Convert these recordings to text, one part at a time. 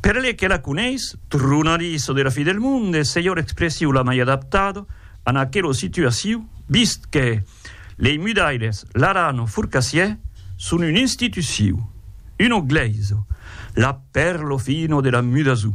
Per le que la coneis, tronariso de la fi del monde, selhor expressiu la mai adaptada an aquelo situaciu, vist que lei mudailes, l'aran o furcassiè, son un instituciu, uno gleiso, la perlo fino de la mudasu.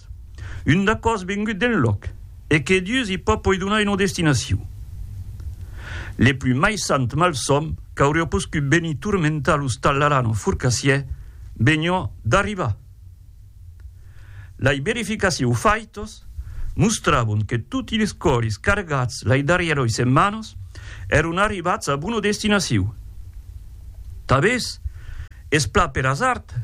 Cat. Un dacòs vengut d'enlòc e que Dius i pòt poi donar una destinacion. Le plus maissant malsòm qu'aurió poscut venir turmentar los Tallarano Furcassier venió d'arribar. Lei verificacious faitos mostrabon que toti les còris cargats lei darrièroi setmanos èron arribats a bona destinacion. Tabés, Es plan per asard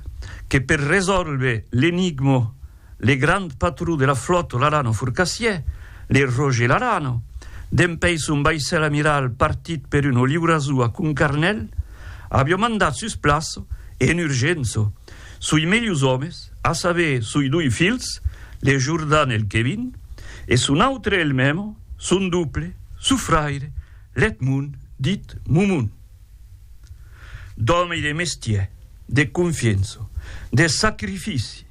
que per resòlver l'enigmo le grand patron de la flòta Larano Furcassier, le Roger Larano, dempèi son vaissèl amiral partit per un oliurazou a Concarnèl, avió mandat sus plaça e en urgença soi melhors òmes, a saber soi doi filhs, le Jordan e le Kevin, e son autre elmèmo, son doble, son fraire, l'Edmond, dit Momon. D'òme e de mestièr, de confiença, de sacrifici,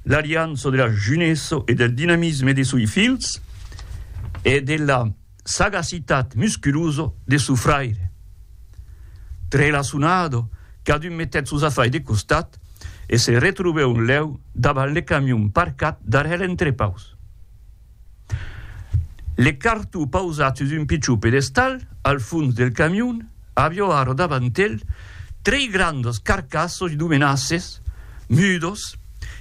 l'aliança de la junessa e del dinamisme de soi filhs e de la sagacitat musculosa de sou fraire. Trelaçonada, cadun metèt sos afais de costat e se retrobèu un lèu davant le camion parcat darrèr l'entrepaus. Le cartó pausat sus un pichon pedestal al fons del camion avió ara davant el tres grandas carcassas de menaces mudas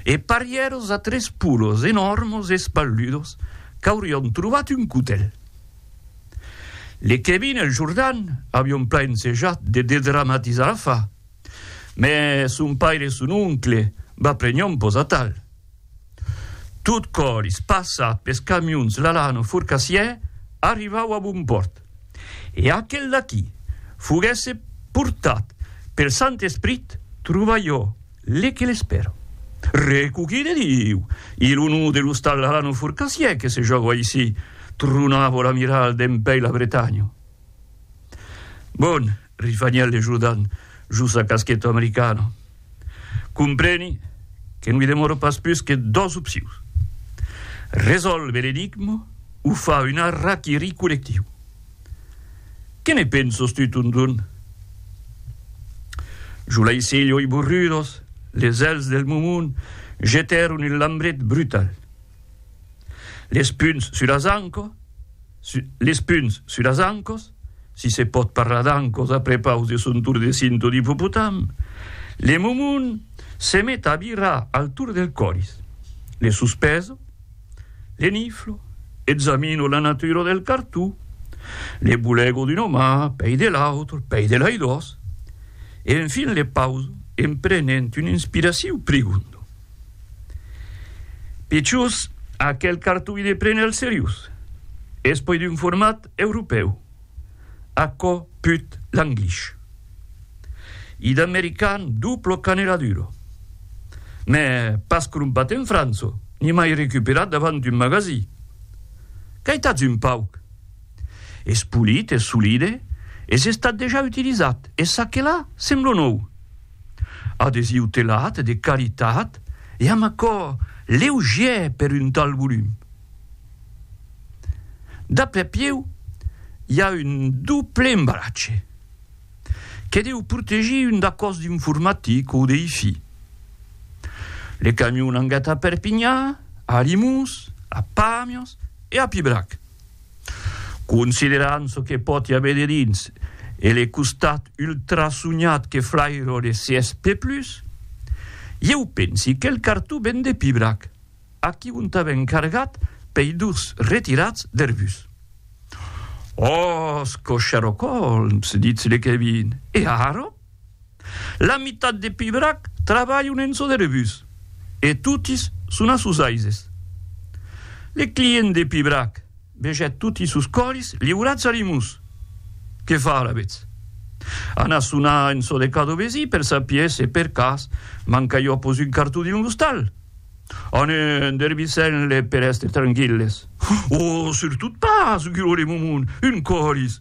e parièras a tres polos enòrmas e espalludas qu'aurián trobat un cotèl. Le Kevin e le Jordan avián plan ensejat de dedramatizar l'afar, mas son paire e son oncle va prenhon pas a tal. Tot colis, passat pes camions Lalano Forcassier, arrivau a bon pòrt. E aquel d'aqui foguèsse portat pel Sant Esprit, trova jo le que l'espèra. Recoquí de Diu! I lo nom de l'ostal Lalano Forcassier que se jòga aicí, tronava l'amiral dempèi la Bretanha. Bon, risvanièt le Jordan jos sa casqueta americana, compreni que non i demòra pas pus que dos opcions, resòlver l'enigma o far un harakiri collectiu. Que ne pensas tu, Tundun? Jos lei cèli oi borrudos, les èlhs del Mumun jetèron un lambret brutal. Les punts sus las ancas, Les punts sus las ancos, si se pòt parlar d'ancos a prepaus de son tour de cinto d'ipopotam, le momon se met a virar al tour del coris. Le suspeso, le niflo, examino la natura del cartó, le bulego d'un omà, pei de l'autre, pei de lei dos, e enfin le pauso en prenent un inspiraciu prigondo. Pichus, aquel cartoi de prene al seriós. Es puèi d'un format europèu, aquò put l'anglís. I d'american duplo caneraduro. Mè pas crompat en França, ni mai recuperat davant un magasí. Qu'aitatz un pauc! Es polit, es solide, es estat dejà utilizat, e ça que là, sembla nòu. Adesiu telat de qualitat e amb acòr leugièr per un tal volum. D'après Pieu, i a un doble embalatge que deu protegir un d'acò's d'informatic o de Hi-Fi. Le camion angat a Perpinha, a Alimús, a Pàmios e a Pibrac. Considerant çò que pòt i aver dedins e le costat ultrasonhat que flairo de CSP+, ieu pensi qu'el cartó ven de Pibrac, aquí ont avèm cargat pei durs retirats der bus. Òsco Sherlock Holmes, ditz le Kevin, e ara? La mitat de Pibrac trabalhon en çò de rebús, e totis son a sos aises. Le client de Pibrac vegèt toti sos còlis liurats a Rimús. Que far, alavetz? Anar sonar en çò de cada vesí per sapier se per cas manca jo pos un cartó dins l'ostal? Anem dervisent-les per èster tranquilles. Oh, surtot pas! guirolèm au mond, un còlis!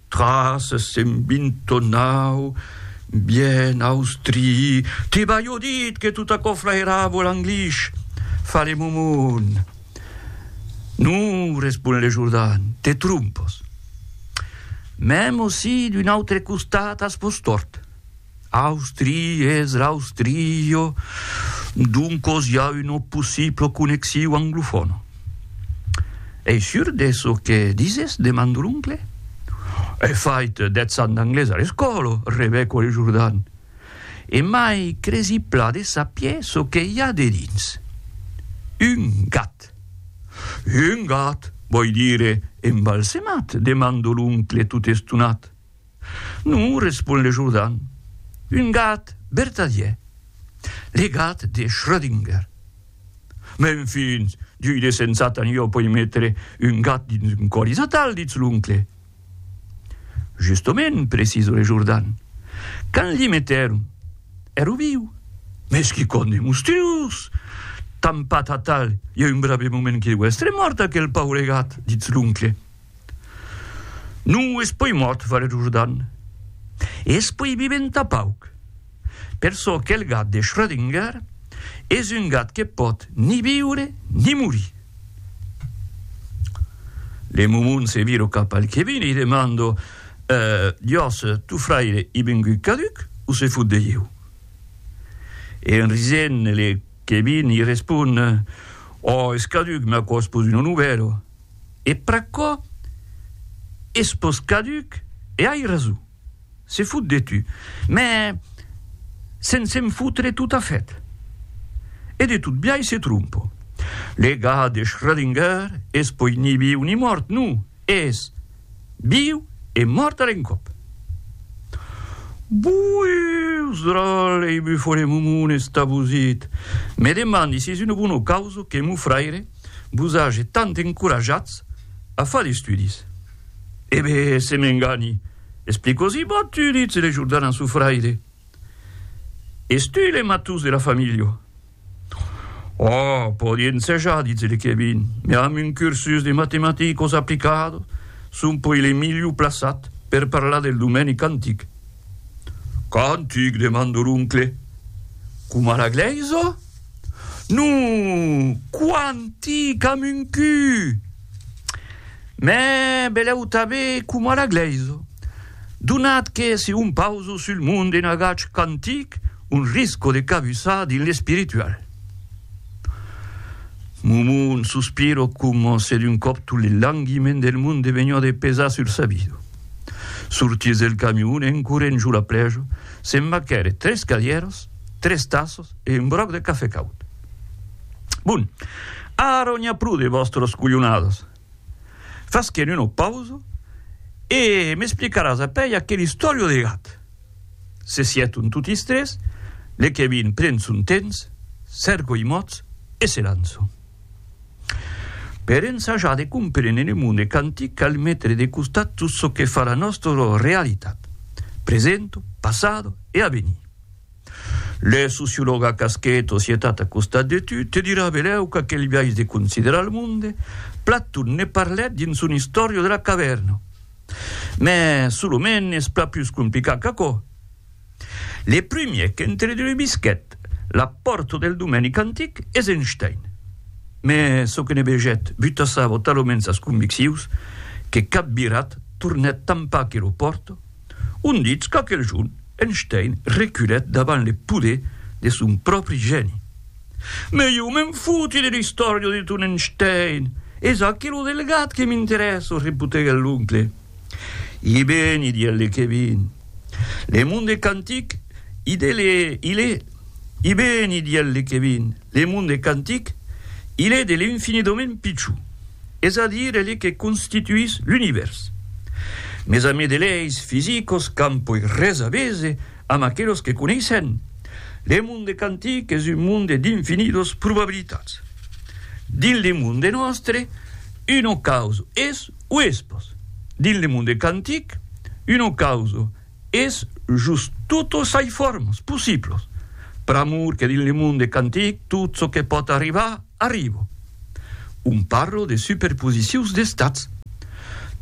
Tras s'en vint tonau, bien austri, Te balho dit que tot aquò flairavo l'Anglish, fa le momon. Non, respon le Jordan, te trompos. Mèm si d'un autre costat as vos tòrt. Austria es l'Austria, doncos i a una possibla connexiu anglofòna. Ei sur de çò que dises? demanda l'oncle. Ei fait d'etzan d'anglés a l'escòla, rebeco el Jordan, e mai cresi plan de sapier çò que i a dedins. Un gat. Un gat, vòi dire embalsemat? demanda l'oncle tot estonat. Non, respon le Jordan, un gat vertadièr, le gat de Schrödinger. Men fins, diu de sensat, tant jo poi metre un gat dins un còlis natal, ditz l'oncle. Justament, precisa le Jordan, quand l'i metèron, èra viu. Mes quicòm de monstruós! Tampat atal, i a un brave moment que deu èstre mòrt aquel paure gat, ditz l'oncle. Non es puèi mòrt, Vale do Jordan, e es puèi vivent tà pauc. Per çò qu'el gat de Schrödinger, es un gat que pòt ni viure ni morir. Le momon se viro cap al Kevin e li demando, Jos, tu fraire i vengut caduc o se fot de ieu? E en risent, le Kevin li respon, Ò, es caduc, me aquò's pus un onovèro. e pr'aquò es pòst caduc e ai rason, se fot de tu, mè sen se'n fotre totafèt. E de tot biais se trompa. Le gat de Schrödinger es poi ni viu ni mòrt, non, es viu e mòrt a l'encòp. Boius dròl ei bufo de momon estabosit! Me demandi si es una bona causa que mon fraire vos age tant encorajats a far d'estudis. E be, se m'engani, explicosi, Boh, tu ditz, le Jordan a su fraire, Es tu le matús de la familha? Oh, pòdi ensejar, ditz le Kevin, me amb un cursus de matematicos aplicados son poi le milhor plaçat per parlar del domèni quantic. Quantic? demanda l'oncle. Coma la glèisa? Non! Quanti qu'am un cu! Mè belèu tabé coma la glèisa, donat que se hom pausa sul mond d'un agach quantic, on risca de cabussar dins l'espiritual. Mon mon sospira coma se d'un còp tot le languiment del mond devenha de pesar sur sa vida. Sortís del camion en corrent jo la plèja, se maquèret tres cadièras, tres tassas, e un gròc de cafè caud. Bon, ara n'i a pro de vòstras colhonadas. Fasquem una pausa e m'explicaràs apèi aquel istòrio de gat. Se sieton totis tres, le Kevin pren son temps, cèrca i mòts e se lança. Per ensajar de comprene le monde quantic cal metre de costat tot çò que fa la nòstra realitat, present, passat e avenir. Le sociològ a casquet o sietat a costat de tu te dirà belèu qu'aquel biais de considerar lo monde, Platon ne parlèt dins son Istòria de la cavèrna. Mès sul moment es plan pus complicat qu'aquò. Le primièr qu'entredrubisquèt la pòrta del domenic antic es Einstein. Mès çò que ne vegèt butassava taloments sas conviccions que cap virat tornèt tanpà que lo pòrta, On ditz qu'aquel jorn Einstein reculèt davant le poder de son pròpri gèni. Mès ieu me'n foti de l'istòria de ton Einstein! Es aquí lo delgat que m'interèssa, repotegèt l'oncle. I beni, didec le Kevin. Le monde quantic, i de le, i le. I beni, didec le Kevin. Le monde quantic, il est de l'infinidament pichou, es a dire el que constituís l'univèrs. Mes amis de leis fisicos qu'an poi res a vese amb aquelos que coneissèn, le monde quantic es un monde d'infinidos probabilitats. Dins le monde nòstre, uno causo es o es pòs. Dins le monde quantic, uno causo Es just totes soi formes possibles, pr'amor que dins le monde quantic tot çò que pòt arribar, arriba. Un parle de superposicions d'estats.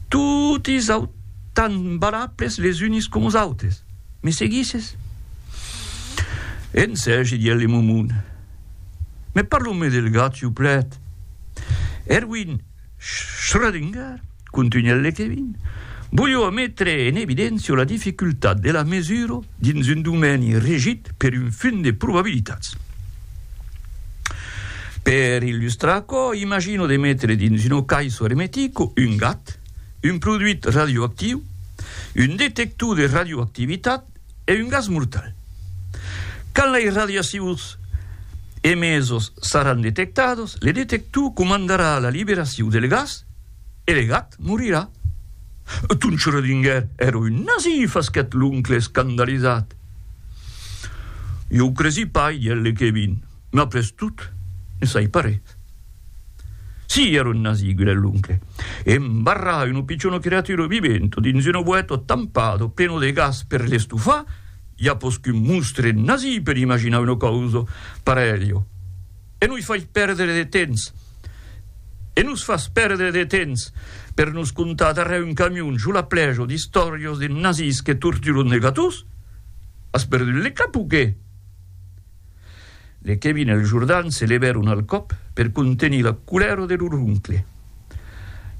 Toti sau tant valables les unes coma es autes. Me seguisses? En serge dient le momon. Me parlo-me del gat, siuplèt. Erwin, Schrödinger, contunhèt Lekevin, volió metre en evidéncia la dificultat de la mesura dins un domèni regit per un fum de probabilitats. Per illustrar aquò, imagino de metre dins una caissa ermetica un gat, un produit radioactiu, un detector de radioactivitat, e un gas mortal. Quand lei radiacions emesos saràn detectados, le detector comandarà la liberacion del gas e le gat morirà. Ton Schrödinger èra un nazi, fasquèt l'oncle escandalizat. Jo cresí pas, dièt le Kevin. M'a pres tot, ne sai pas res. Si, èra un nazí, gudèt l'oncle, e embarrà una pichona creatura viventa dins una boèta tampada plena de gas per l'estufar, i a pòs qu'un monstre nazí per imaginar una causa parelha. E noi fai pèrdre de temps! E nos fas pèrdre de temps per nos contar darrèr un camion jo la plèja d'istòrias de nazís que torturan de gatós? As perdut le cap o qué? Le Kevin e le Jordan se levèron al còp per contenir la colèra de lor oncle.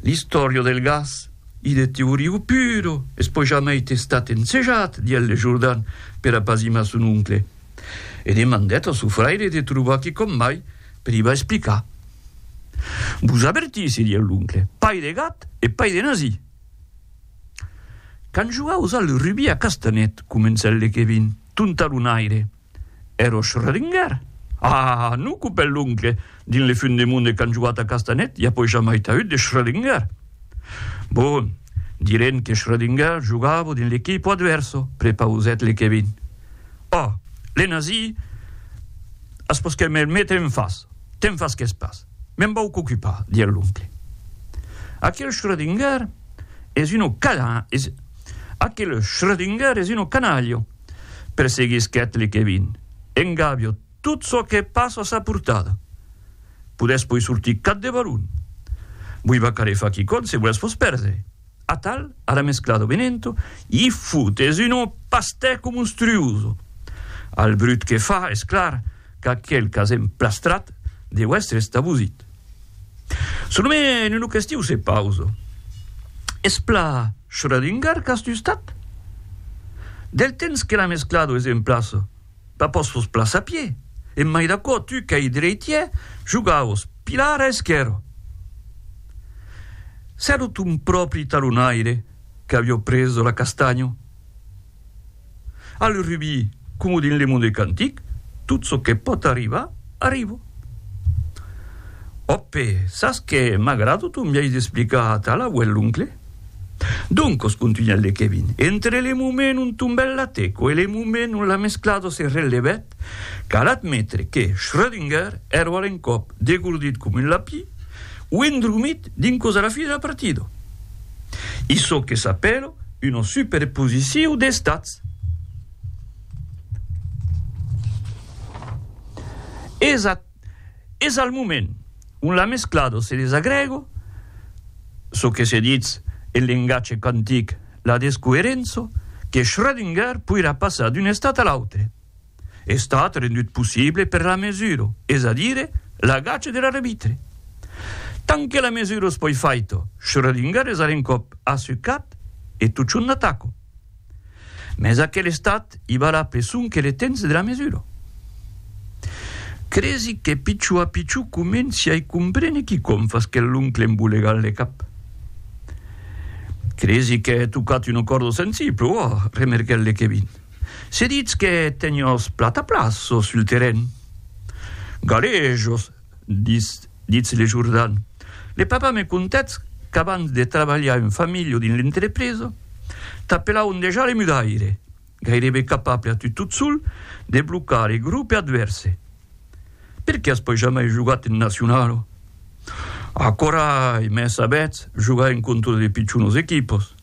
L'istòria del gas i de Teoriu Puro es pas jamai testat ensejat, diguèt le Jordan per apazimar son oncle, e demandèt a son fraire de trobar quicòm mai per i va explicar. Vos avertissi, diguèt l'oncle, pai de gat e pai de nazi! Quand jogaus al rugbi a Castanet, comencèt le Kevin, ton talonaire, Ero Schrödinger? Ah, non copèl l'oncle, dins le fun de mon de canjoat a Castanet i a poi jamai taüt de Schrödinger. Bon, direm que Schrödinger jogavo dins l'equipo adverso, prepausèt le Kevin. Oh, le nazi as pòs que me'l mete en fas, te'n fasques pas, me'n vau qu'ocupar, diguèt l'oncle. Aquel Schrödinger es uno canalha! perseguisquèt le Kevin. En Gabio, tot çò que pas a sa portada. Podètz poi sortir cap de Barun. Voi va caler far quicòm se volètz vos pèrder. Atal, ara mesclado venento, i foutes un pastèco monstruoso. Al brut que fa, es clar qu'aquel qu'as emplastrat deu èstre estabosit. Son nome en un ocastiu se pausa. Es pla Schrödinger qu'as tustat? Del temps que l'an esclado es en plaça, pas pòs fos pla sapier. E mai d'aquò, tu qu'ei dreitier, jogaos pilar a esquèrra. S'èra ton pròpri talonaire qu'avió preso la castanha. A le rubis, coma dins le monde quantic, tot çò que pòt arribar, arriba. Òpe, sas qué? M'agrada ton biais d'explicar atà l'auèlh l'oncle. Doncos, contunhèt le Kevin, entre le moment ont tombèt la teco e le moment ont la mesclada se relevèt, Cal admetre que Schrödinger ero a l'encòp degordit com un lapí o endromit dins cosa la fina partida. I çò que s'apèla una superposiciu d'estats. Es a. es al moment ont la mesclado se desagrego, çò que se ditz en lengatge quantic la descoerenço, que Schrödinger poirà passar d'un estat a l'autre, estat rendut possible per la mesuro, es a dire l'agach de l'arbitre. Tant que la mesuro es poi faito, Schrödinger es a l'encòp assucat e totjorn a taco. Mès aquel estat i vala pe sonque le temps de la mesura. Cresi que pichó a pichó comenci a i comprene quicòm fas que l'oncle embolegal le cap. Cresi que hè tocat una còrda sensible, ò, remerguèt le Kevin. Se ditz que teniós plata plaço sul terren. Galejos, Ditz Le Jourdan, Le papa me contèt qu'abans de trabalhar en familha o dins l'entrepresa, t'apelavan dejà le mudaire, gairebe capable a tu tot sol de blocar le grope advèrse. Per qué as pas jamai jogat en nacionala? Acorai, mès sabètz, jogar en contra de pichonas equipas.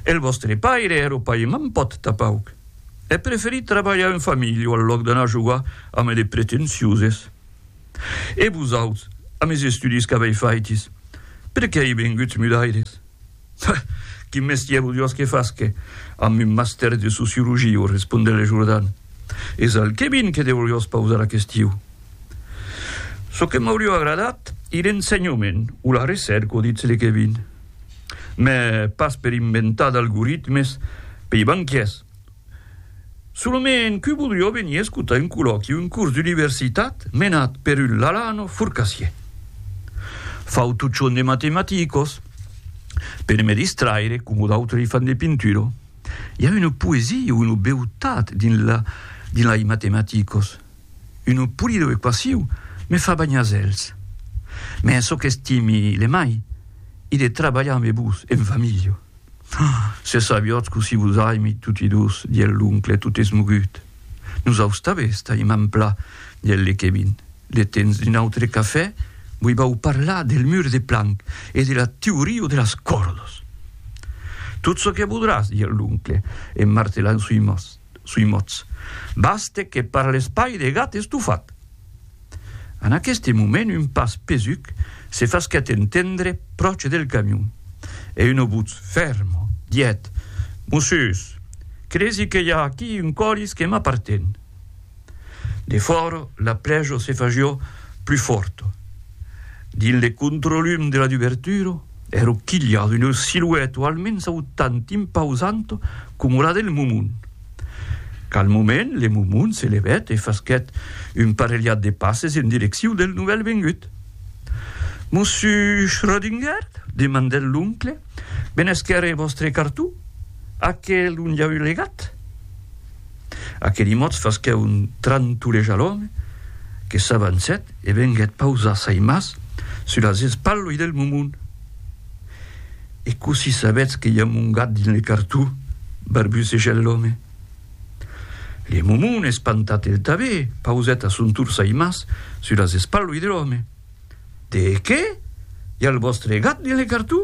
El vòstre paire e lo pair m'an pòt tapauc. È preferit trabalhar en familh o al lòc d'anar jogar ame de pretencioses. E vosauts, a mes estudis qu'avei faitis, per qué ei venguts mudaires? Ha! Quin mestièr vodiós que fasque amb un mastèr de sociologia o respondè le Jordan. Es al Kevin que deuriós pausar aquestiu. Çò que m'aurió agradat, ir en ensenhament o la recèrca o ditz le Kevin. Mès pas per inventar d'algoritmes pei banquiers. Solament que voldrió venir escotar un colòqui, un curs d'universitat menat per un Lalano furcassier. Fautuchon de matematicos, per me distraire, coma d'autres fan de pinturo. I a una poesia, una beutat dins la dins lai matematicos. Unu pulido e quasiu me fa banhar zèls. Mès çò qu'estimi le mai i de trabalhar me vos en va milho. Ah! se sabiotz cossí vos aimi toti dos, dièl l'oncle tot esmogut. Nos austabe estaim en pla, dièl le Kevin. Le tens d'un autre cafè? Voi vau parlar del mur de Planck e de la teorio de las còrdos. Tot çò que vodràs, dièl l'oncle en martelant sui mòs. sui mots, baste que per l'espai de gat estofat. En aqueste moment un pas pesuc se fasquèt entendre pròche del camion, e una votz fèrma diguèt, Mossus, cresi que i a aquí un colis que m'aparten. De fòra, la prèja se fagió plus fòrta. Dins le controlum de la dubertura, èro quilhat una silueta almens autant impausant coma la del Momon. Calmament, le Momon se levèt e fasquèt un parelhat de passes en direcciu del novèl vengut. Mossu Schrödinger? demandèt l'oncle. Benèsquer e vòstre cartó? Aquel ont i a eu le gat? Aqueli mots fasquèt un trantuleja a l'òme, que s'avancèt e venguèt pausar sai mas sus las espalhoi del Momon. E cossí sabètz que i a mon gat dins le cartó? barbusejèt l'òme. Le Momon, espantat el tanben, pausèt a son tor sai mas sus las espalhoi de l'òme. De qué? I al vòstre gat li lecar tu?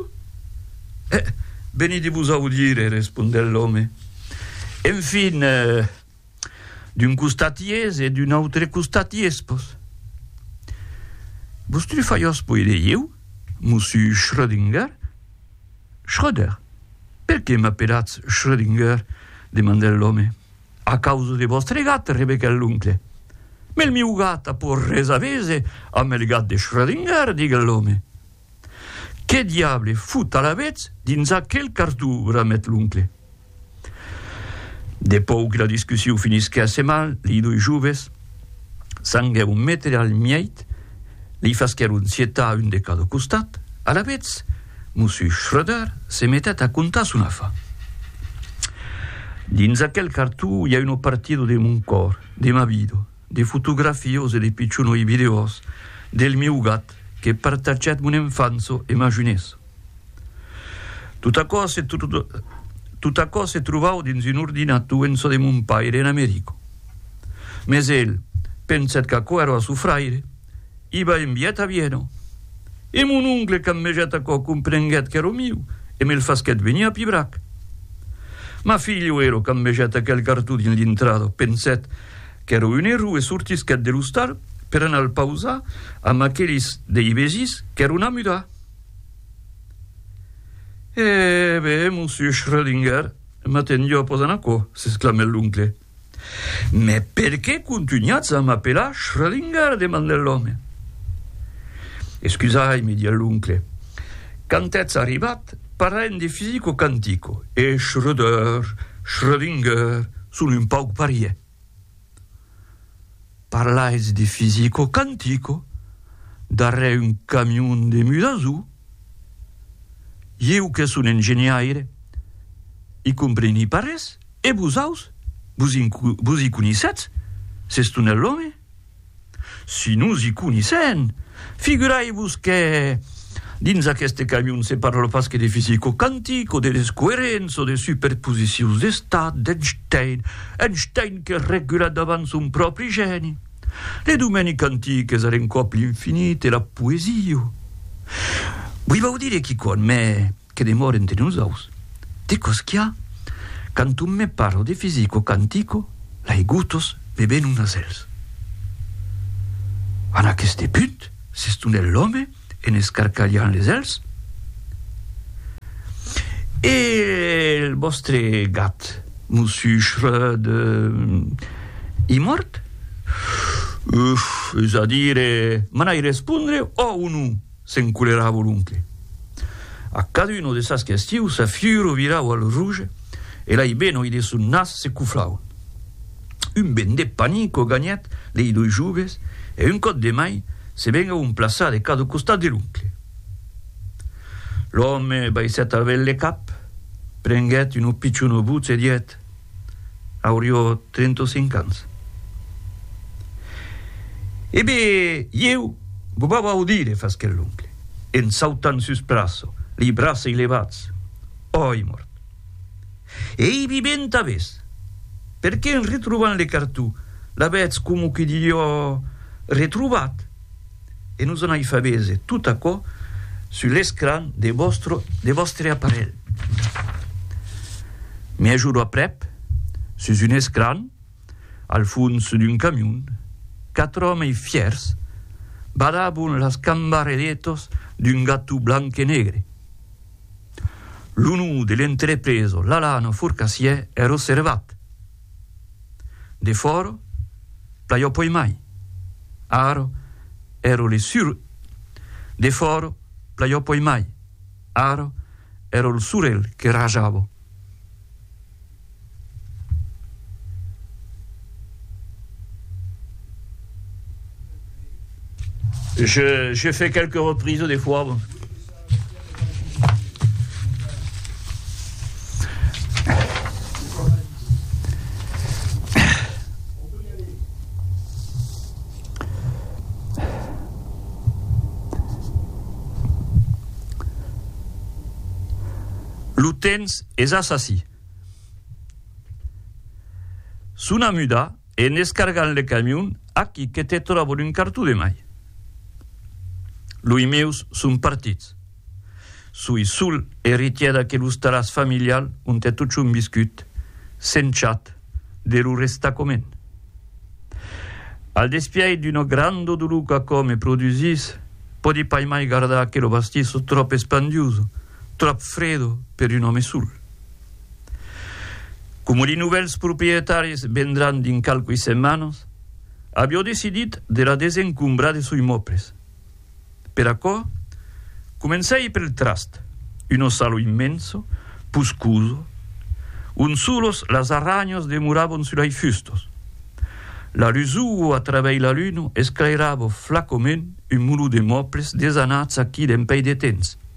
Eh, venidi-vos audire, respondèt l'òme. Enfin, d'un costat iés e d'un autre costat iéspos. Vos trufaiós poi de ieu, mossu Schrödinger? Schröder? Per qué m'apelatz Schrödinger? demandèt l'òme. A causa de vòstre gat, rebequèt l'oncle. Mès miu gat a pòur res a vese amb el gat de Schrödinger, diguèt l'òme. Qué diable fut alavetz dins aquel cartó? bramèt l'oncle. De pòur que la discussion finisquèsse mal, lei doi joves. Sanguèron méter al mièit, li fasquèron sietar un de cada costat, alavetz, Mossus Schröder se metèt a contar son afa. Dins aquel cartó i a uno partido de mon còr, de ma vida, de fotografios e de pichonoi videos del mieu gat que partatgèt mon enfança e ma junessa. Tot aquò se tot aquò se trovau dins un ordinator en çò de mon paire en Americo. Mes el pensèt qu'aquò èra a çò fraire, i va enviat a Viena. E mon oncle quand megèt aquò comprenguèt qu'èra miu e me'l fasquèt venir a Pibrac. Ma filho ero quand megèt aquel cartó dins l'intrada pensèt qu'èra un error e sortisquèt de l'ostal per anar al pausar amb aqueles dei vesis qu'èron a mudar. E be, monsieur Schrödinger, matin jo posan aquò, s'exclamèt l'oncle. Mès per qué contunhatz a m'apelar Schrödinger? demandèt l'òme. Excusai-me, didec l'oncle, quand ètz arribat, parlàiem de fisico-quantico, e Schröder, Schrödinger, son un pauc parièr. Parlais de fisico quantico darrèr un camion de mudazu? Ieu que son engenhaire i compreni pas res e vosaus vos i conisètz s'es tonèr l'òme? Si nos i conissèn, figurai-vos que dins aqueste camion se parla pas que de fisico quantic o de descoerença o de superposicions d'estat d'Einstein, Einstein que regula davant son pròpri gèni le domeni quantic es a l'encòp l'infinit e la poesia. Voi vau dire quicòm, mès. Que demòre entre nosaus. De cosquiá, quand un me parla de fisico quantico, l'aigotos me ven un nasèls. En aqueste punt, s'estonèt l'òme en escarcalhant les èlhs. E el vòstre gat, Mossu Schröd, ei mòrt? Uf! Es a dire, m'anai respondre, ò o non? S'encoleravo l'oncle. A caduna de sas questius sa fiuro viravo al rouge e lei benoi de son nas se coflaua. Un ben de panico ganhèt lei doi joves e un còp de mai se vengavon plaçar de cada costat de l'oncle. L'òme baissèt al ben le cap, prenguèt una pichona votz e didèt. Aurió 35 ans. E be, ieu go vau audire, fasquèt l'oncle, en sautant sus plaça, lei braçei levats. Oi mòrt! Ei viventa aves! Perqué en retrobant le cartó, l'avètz coma que dilhò retrobat? e nos anai far veser tot aquò sus l'escran de vòstre, de vòstre aparelh. Me ajudo aprèp, sus un escran, al fons d'un camion, quatre òmes fièrs badabon las cambarelettas d'un gato blanc e negre. Lo nom de l'entrepresa Lalana Forcassier è reservat, De fòro, plaiò poi mai. Aro, ero le sur. De fòro, plaiò poi mai. Aro, ero l' surel que rajavo. Je, je fais quelques reprises des fois. Lo temps es assassí. Sona muda. En escargant le camion, aquí que te tròbo d'un cartó de mai. Loi meus son partits. Soi sol eritièr d'aquelos talàs familial ont è totjorn viscut, sent chat de lo restacomènt. Al despièit d'una granda dolor qu'aquò me produsís, pòdi pas mai gardar aquela bastissa tròp espandiusa, tròp fredo per un òme sol. Coma li novèls proprietaris vendràn dins qualqui setmanas, avió decidit de la desencombrar de soi mòbles. Per aquò, comencèi pel trast, un ossalo immenso, puscoso, ont solos las arranhas demoràvon sus lai fustos. La lusuo a travèi la luna esclairava flacoment un mulot de mòbles desanats aquí d'empèi de temps.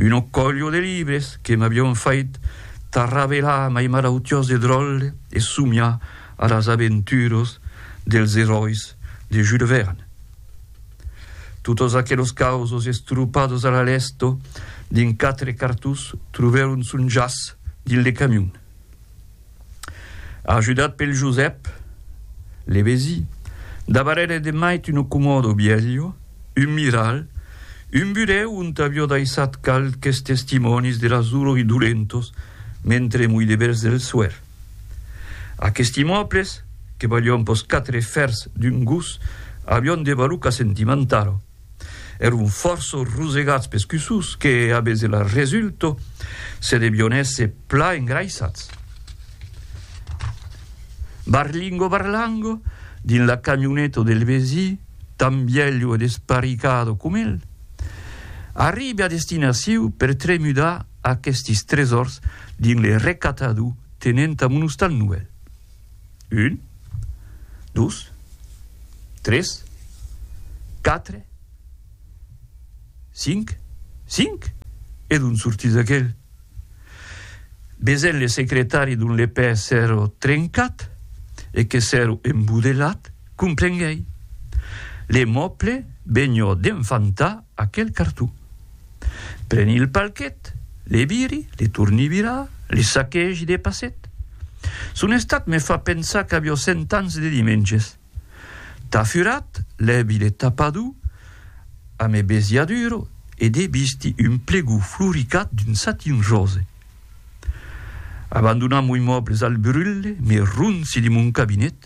Una colho de libres que m'avion fait tarravelar mai marautiós e dròlle e somiar a las aventuros dels eròis de Jules Verne. Totos aquelos causos estropados a la lèsto dins quatre cartons trobèron son jaç dins le camion. Ajudat pel Josèp Levesi, dabarere de mait un comodo bielho, un miral, un burèu ont avió daissat qualques testimònis de las dolors dolentos mentre mui de bèls del soèr. Aquesti mòbles, que valion pos quatre fèrs d'un gos, avion de valuca sentimentala. Èron fòrça rosegats pes cussos que, a bese la resulta, se devion èsser plan engraissats. Barlingo Barlango, dins la camioneta del vesí, tan vielho e desparicado com el, arribe a destinacion per tremudar aquestes tresors dins le recatador tenent a Monostan Noèl. Un, dus, tres, quatre, cinc, cinc? E d'on sortís aquel? Besèn le secretari dont le pè s'èra trencat e que s'èra embudelat, comprenguèi. Le mòble benhò d'enfantar aquel carton. Preni el palquet, le viri, le torni virar, le saquegi de passet. Son estat me fa pensar qu'avió cent ans de dimenges. Tà furat, lèvi le tapador a me besiaduro e de visti un plegor floricat d'un satin rose. Abandonam mui mòbles al brulle, me ronci de mon cabinet.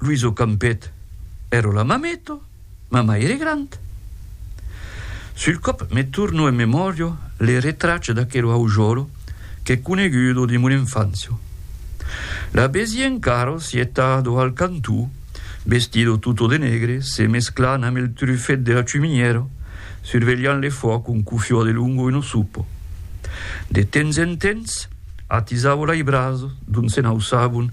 Luis o campet ero la mameto, ma mai ere grand. Sul còp me torno en memòrio le retrache d'aquero aujòlo qu'è conegudo de mon enfància. La vesie encaro sietado al cantó, vestido tutto de negre, se mesclant amb el trufet de la chuminièra, survelhant le fuòc un cuffiò de longo e no sopo. De temps en temps, atisavo lai braços dont se n'auçavon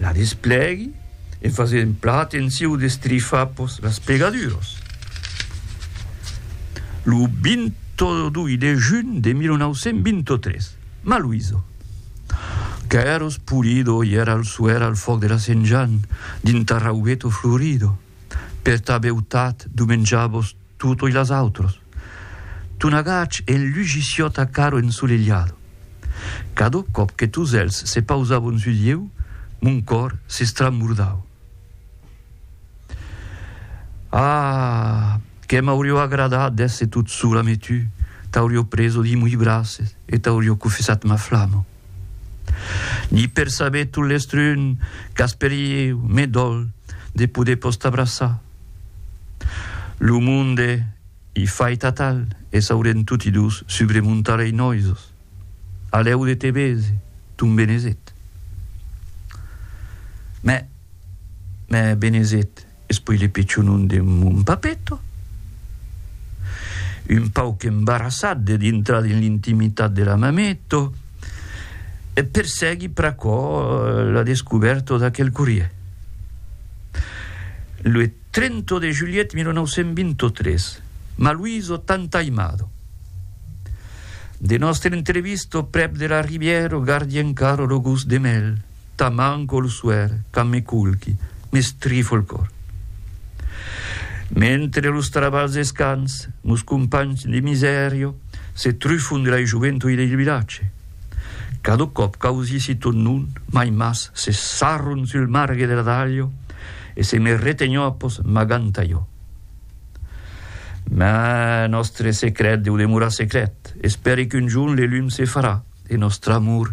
La desplègui en fasent plan atenciu d'estrifar pòs las pegaduras. Lo 22 de junh de 1923, ma Luiso, qu'èra espolido, i èra al suèr al fòc de la Sent Jan, dins Tarraubeto florido, per ta beutat, dumenjavos tutoi las autras. Tu n'agach en lugissiòt a caro ensolelhado. Cado còp que tos èlhs se pausavon sul lieu, mon còr s'estramordau. Ah! que m'aurió agradat d'èsser tot sola me tu t'aurió preso dins moi braces e t'aurió cofessat ma flama. Ni per saber tot l'estrun qu'asperieu me dol de poder pos t'abraçar. Lo monde i fait atal e s'aurem toti dos subre mon talei noisos. Alèu de te bese, ton benezet. Mè, mè benezet. Es poi le pechonon de mon papeto, un pauc embarassat de dintrar dins l'intimitat de la mameto, e per seguir pr'aquò la descubèrta d'aquel corrier. Lo 30 de julhet 1923, ma Luiso t'antaimado. De nòstre entrevista prèp de la rivièra gardi encara lo gust de mèl. Ta man col suèr quand me culqui, m'estrifo el còr. Mentre los travals escans, nos companhs de misèria se trufon de la joventude del vilatge. Cada còp qu'ausissi ton nom, mai mas se sarron sul margue de la talha e se me retenhon após magant aiò. Mas nòstre secret deu demorar secret. Espèri qu'un jorn le lum se farà e nòstre amor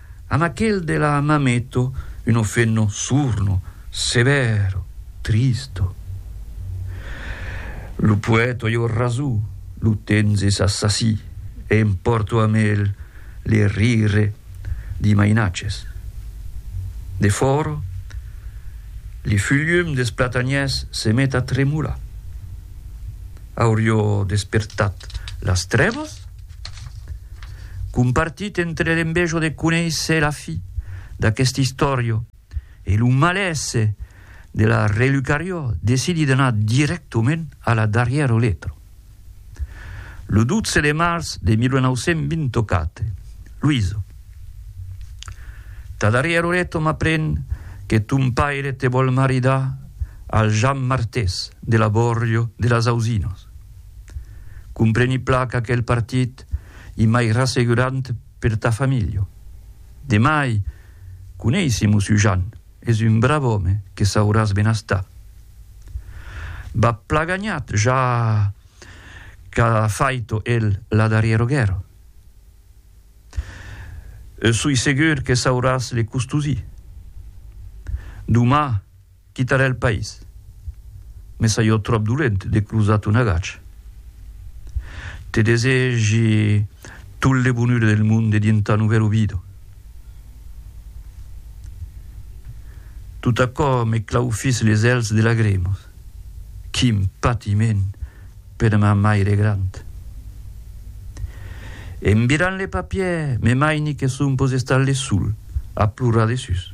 An aquel de la Mameto uno fenno surno, severo, tristo. Lo poèto jo raso, lo tenzes assassí, e em pòrto amb el le rire d'i mainatges. De fòro, le fulhum des platanhers se met a tremolar. Aurió despertat las trèvas? Compartit entre l'envejo de conéisser la fi d'aqueste istòrio e lo malaise de la relucarió decidi d'anar dirèctament a la darrièra letra. Lo 12 de març de 1924, Luiso. Ta darrièra letra m'apren que ton paire te vòl maridar al Jan Martés de la Bòrrio de las Ausinas. Compreni plan qu'aquel partit i mai rassegurant per ta familha. De mai, coneissi mo Sujan, es un brav òme que sauràs benestar. B'as plan ganhat ja qu'a faito el la darrièra guèrra. Soi segur que sauràs le custosir. Doma. Quitarè el país. Me saio tròp dolent de crosar ton agach. Te desegi tot le bonure del mond e dins ta novèl ovido. Tot aquò me claufís les èlhs de lagremas. Quin patiment per ma maire grand! En virant le papièr, me maini que son pos estar le sol a plorar desús.